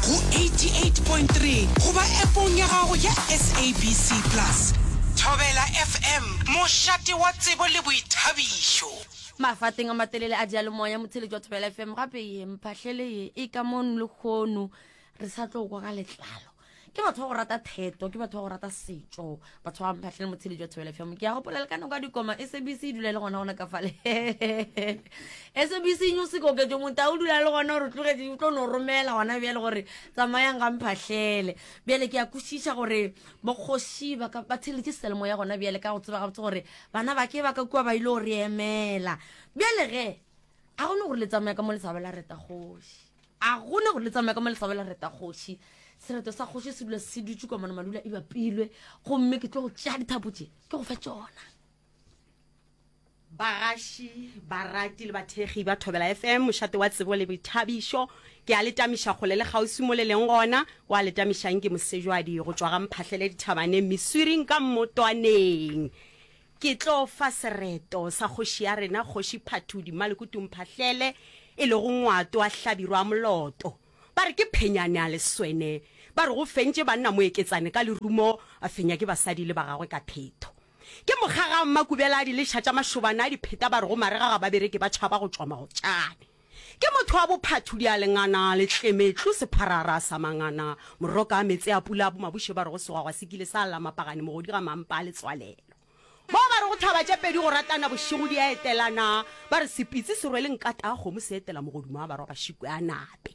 go 88.3 goba App-ong ya gago ya SABC Plus. Thobela FM, mošate wa tsebo le boithabišo. Mafateng a matelele a diyalemoya, motheletši wa Thobela FM, gape ye mphahlele ye e ka mon lekgono re sa tlo kwa ka letlalo. Ke batho ba go rata theto, ke batho ba go rata setšo. batho ba mphatlhele motshedi jwa thobela fm ke a gopola le ka nako ya dikoma sabc e dula e le gona gona ka fale sabc e nyose koketso motao o dula le gona gore tlogetse o tlo no romela gona bjale gore tsamayang ga mphatlhele bjale ke ya kwešiša gore bokgoši ba theletše selemo ya gona bjale ka go tseba gabotse gore bana ba ke ba ka kua ba ile go re emela bjale ge ga gone gore le tsamaya ka mo le sa ba la reta kgoši A go ne gore le tsamaye ka mo lefabo la reta kgoši. Sereto sa kgoši se dula se dutše kwa mono malula e bapilwe, gomme ke tlo go tšea dithapo tše ke go fe tšona. Bagaši, barati le bathekgi ba Thobela FM, mošate wa tsebo le boithabišo. Ke a le tamiša kgole le kgauswi mo le leng gona. Wa le tamišang ke Mosejwadi go tšwa ga Mphahlele dithabaneng, Miswiring ka Mmotwaneng. Ke tlo fa sereto sa kgoši ya rena Kgoši Phathudi Maleku Tumphahlele e lego ngwato wa Hlabirwa Moloto. Ba re ke phenyane a leswene. Ba re go fentše banna moeketsane ka lerumo, a fenya ke basadi le ba gagwe ka phetho. Ke mokgaga mmakubela a diliša tša mašobana a dipheta ba re go marega ga babereki ba tšhaba go tšwa magotšane. Ke motho wa bophathudi a lengana, letlemetlu, sepharara sa mangana, moroka a meetse a pula a bomabuše ba rego segwagwa se kile sa lla mapagane mogodi ga mampa a letswalelo. Mo ba rego thaba tše pedi go ratana bošego di a etelana, ba re sepitsi se rwele nkata a kgomo se etela mogodumo a barwa ba šikwe a nape.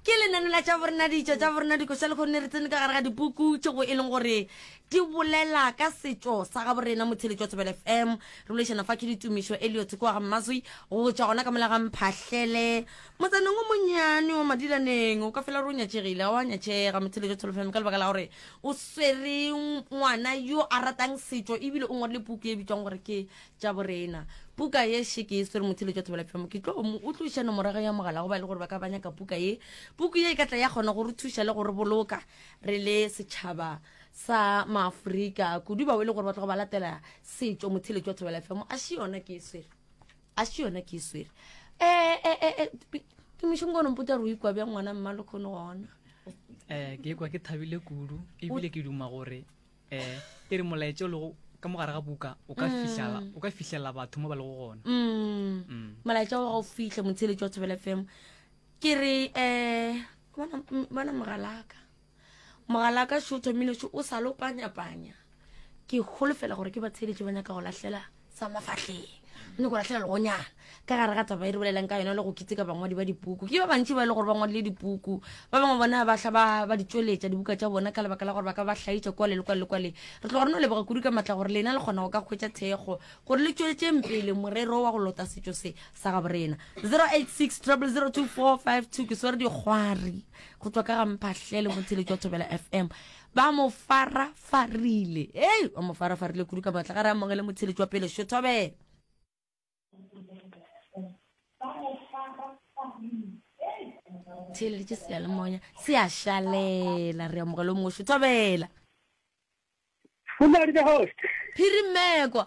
Ke lenane la tša borena, ditša tša borena, dikoša lehono ne re tsene ka gare ga dipuku tšego e leng gore di bolela ka setšo sa ga borena. Motheletši wa Thobela FM re boledišana fa ke Ditumišo Elliot kwa ga Mmazwi go tšwa gona ka mola ga Mphahlele motsaneng o monyane wa Madilaneng. O ka fela re o nyatšegile, ga o a nyatšega motheletši wa Thobela FM ka lebaka la gore o swere ngwana yo a ratang setšo ebile o ngwadile puku e bitšwago gore ke tša borena. Puka ye še ke e swere motshelo tša thobela phemo ke tlo mo o tloša nomorago ya mogala go ba le gore ba ka banya ka puka ye puku ye e ka tla ya kgona go re thuša le go re boloka re le setšhaba sa maafrika kudu ba o e le gore ba tlogo ba latela setšo motshelo tša thobela phemo a še yona ke e swere a še yona ke e swere eh, eh, eh, eh, ke mošong kone mputa re o ikwa bjang ngwana mma le kgone gona um ke kwa ke thabile kudu ebile ke duma gore eh e re molaetša o lego ka mo gare ga buka o ka fihlela o ka fihlelela batho mo ba lego gona Mm. Mm. molaetša wa gago fihle motsheletši wa thobela fm ke re um bona m- bona mogalaka mogalaka šo thomile šo o sa lo panyapanya ke holofela gore ke batsheletši ba nyaka go lahlela sa mafahleng ne go lahlela legonyana ka gare ga taba e re bolelang ka yona le go kitseka bangwadi ba dipuku ke ba bantši ba e le gore ba ngwadile dipuku ba bangwe bona ba tla ba di tsweletša dibuka tša bona ka lebaka la gore ba ka ba hlaitša kwale le kwale le kwale re tlo gore no leboga kudu ka matla gore lena le kgona go ka kgwetša thekgo gore le tsweletšeng pele morero wa go lota setšo se sa ga borena 086 00245 ke swere dikgwari go tswa ka ga mphahlele motheletši wa thobela fm ba mo farafarile ei ba mo farafarile kudu ka matla ga re amogele motheletši wa pele šo thobela theeleditše seyalemoya se a šalela re amogele o mongwe šo thobela Good morning, the host. phirimekwa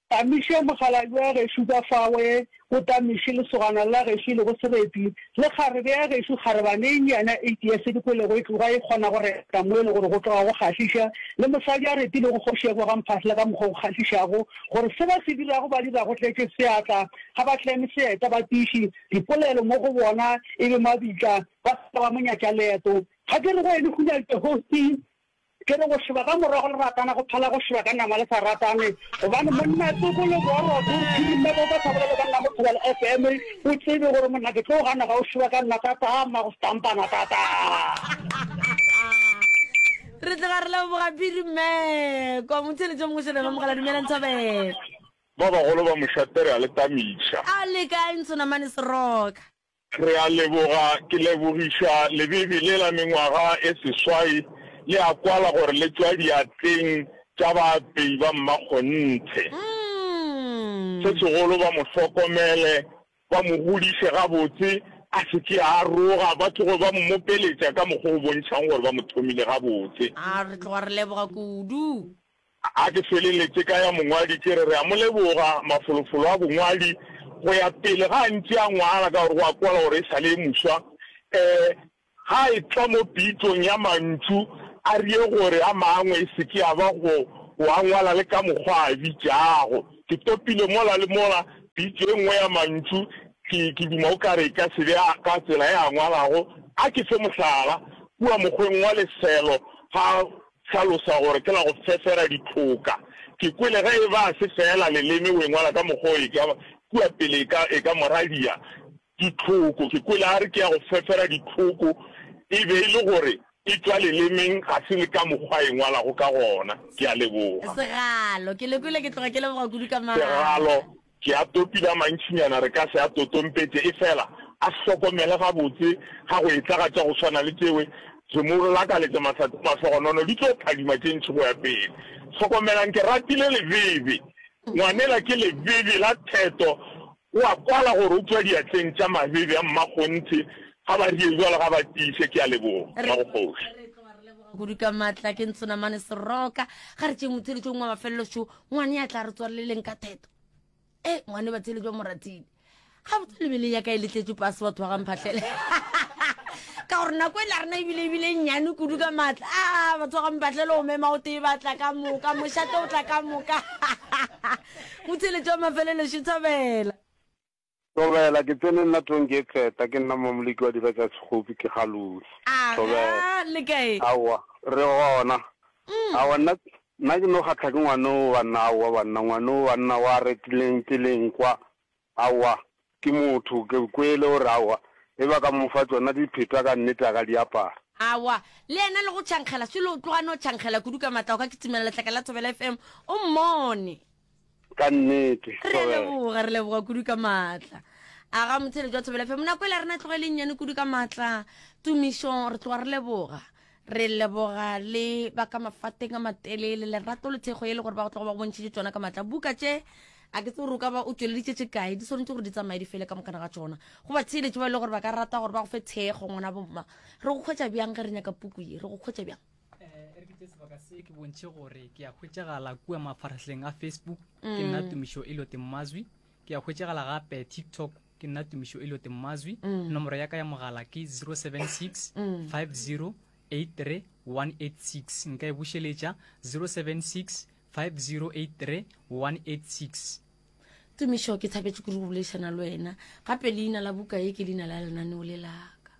Tamiše, mokgalabje wa gešo ka fawe, go Tamiše, lesogana la gešo e lego Sereti, le kgarebe ya gešo, kgarebane e nnyane eight years e dikwelego e tloga e kgona go reta mo e le gore go tloga go kgahliša, le mosadi a retilego kgoši ya Boga Mphahla ka mokgwa o kgahlišago, gore se ba se dirago ba dira go tletše seatla, ga ba tleme seeta ba tiiši dipolelo mo go bona e be mabitla, ba se ka ba mo nyatša leeto. Ga ke re go ene Hunyadi the host, Ke re go šeba ka morago le ratana go phala go šeba ka nama le sa ratane gobane monna tsoko le boroko o re phirime bo ka sa bolele banna mo thobela FM o tsebe gore monna ke tlo gana ga o šeba ka nna tataa mma go stampana tataa. Re tloga re leboga phiri mme kwa motheletšong go šelelo mogala dumelang thabela. Ba bagolo ba mošate re a le tamiša. A le kae ntshonamane seroka. Re a leboga. Ke lebogiša lebibi le la mengwaga e seswai le a kwala gore le tšwa diatleng tša baapei ba mmakgonthe. Se segolo ba mo hlokomele, ba mo godiše gabotse, a se ke a aroga, ba tloge ba mmopeletša ka mokgwa o bontšhago gore ba mo thomile gabotse. A re tloga re leboga kudu. A ke feleletše ka ya mongwadi ke re, Re a mo leboga, mafolofolo a bongwadi go ya pele ga a ntše a ngwala ka gore go a kwala gore e sa le e moswa e ga a etla mo pitšong ya mantšu a rie gore a mangwe e se ke a ba go o a ngwala le ka mokgwa a bitšago. Ke topile mola le mola pitšo e nngwe ya mantšu ke ke duma o ka re e ka se be a ka tsela e a ngwalago. A ke fe mohlala, kua mokgweng wa lefelo ga Hlalosa gore ke la go fefera dithloka. Ke kwele ge e ba se feela leleme o e ngwala ka mokgwa o e ka kua pele e ka, e ka moradia. Ditlhoko. Ke kwele a re ke ya go fefera dithloku e be e le gore e tšwa lelemeng ga se le ka mokgwa a e ngwalago ka gona. Ke a leboga. Segalo. Ke le kwele ke tloga ke leboga kudu ka maatla. Segalo. Ke a topile a mantšinyana re ka se a totompetše, efela a hlokomele gabotse ga go etla ga tša go swana le tšeo. Ke mo lakaletša mahlatse a mahlogonono, di tlo phadima tše ntši go ya pele. Hlokomelang, ke ratile lebebe, ngwanela, ke lebebe la theto. O a kwala gore o tšwa diatleng tša mabebe a mmakgonthe. Ga ba rie bjalo, ga ba tiiše. Ke a leboga, Re, Mmagokgoši. re tloga re leboga kudu ka matla, ke ntsonamane Seroka. Ga re tšeeng motheeletšong wa mafelelo šo, ngwane ya tla re tswaleleng ka theto e ngwane ba tshele jwa moratile ga botse lebeleng ya ka e letletse pase batho ba gamphatlhele ka gore nako e la rena ebile ebile e nnyane kudu ka maatla a ah, batho ba gamphatlhele o mema o tee ba tla ka moka mošate o tla ka moka botshele jwa mafelelo šetshabela Thobela, Ke tsene nna Tonkie Xeta, ke nna Mmamoliki wa Dira Tša Sekgopi, ke ga Lori. Aga, Le kae? Aowa, re gona. Aowa, nna, nna ke no kgatlha ke ngwana o banna, aowa banna, ngwana o banna o a retileng tseleng kwa, aowa, ke motho, ke kwele o re, aowa, e ba ka mo fa tšona dipheta ka nnete a ka di apara. Aowa, le yena le go tšhankgela selo o tloga no tšhankgela kudu ka matla o ka kitimela letlaka la Thobela FM o mmone. ka nnete re a leboga re leboga kudu ka maatla a ga motshele jwa thobela fe monako e le rena tloga e leng nyane kudu ka maatla tumišo re tloga re leboga re leboga le ba ka mafateng a matelele lerato le thekgo e le gore ba go tloga ba go bontšhitše tsona ka maatla buka tše a ke tse gore o ka ba o tšweleditše tše kae di swanetse gore di tsamaye di fele ka mokana ga tsona go ba theeletše ba e le gore ba ka rata gore ba go fe thekgo ngwana bomma re go kgwetša bjang ge re nyaka puku ye re go kgwetša bjang e re ke tse sebaka se ke bontšhe gore ke a hwetšagala kua mafarahleng a facebook ke nna mm. tumišo e lote mmazwi ke a hwetšagala gape tiktok ke nna tumišo e lote mmazwi mm. nomoro ya ka ya mogala ke 076 50 83186 nka e bušeletša 076 5083 186 tumišo ke thabetše kuri go boledišana le wena gape leina la buka ye ke leina la lenaneo le laka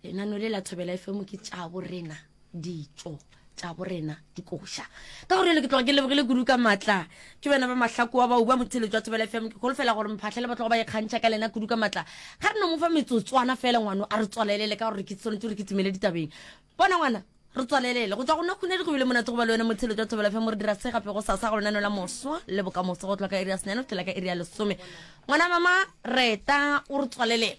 lenano le la thobela e femo ke tša borena ditso tša borena dikoša ka gore ele ke tloga ke lebogile kudu ka matla ke bena ba mahlakoa ba uba motshelo jwa thobela e femo ke golofela gore mphatlhele ba tloga ba ikgantšha ka lena kudu ka matla ga re no mo fa metsotswana fela ngwano a re tswalelele ka gore ke tshwanetse gore ke timele ditabeng bona ngwana re tswalelele go tswa go nna khunedi go bile monate go ba le wena motshelo jwa thobela femo re dira se gape go sasa go lenano la moswa le bokamoso go tloka iri ya senyane go tlela ka iri ya lesome ngwana mama reta o re tswalelela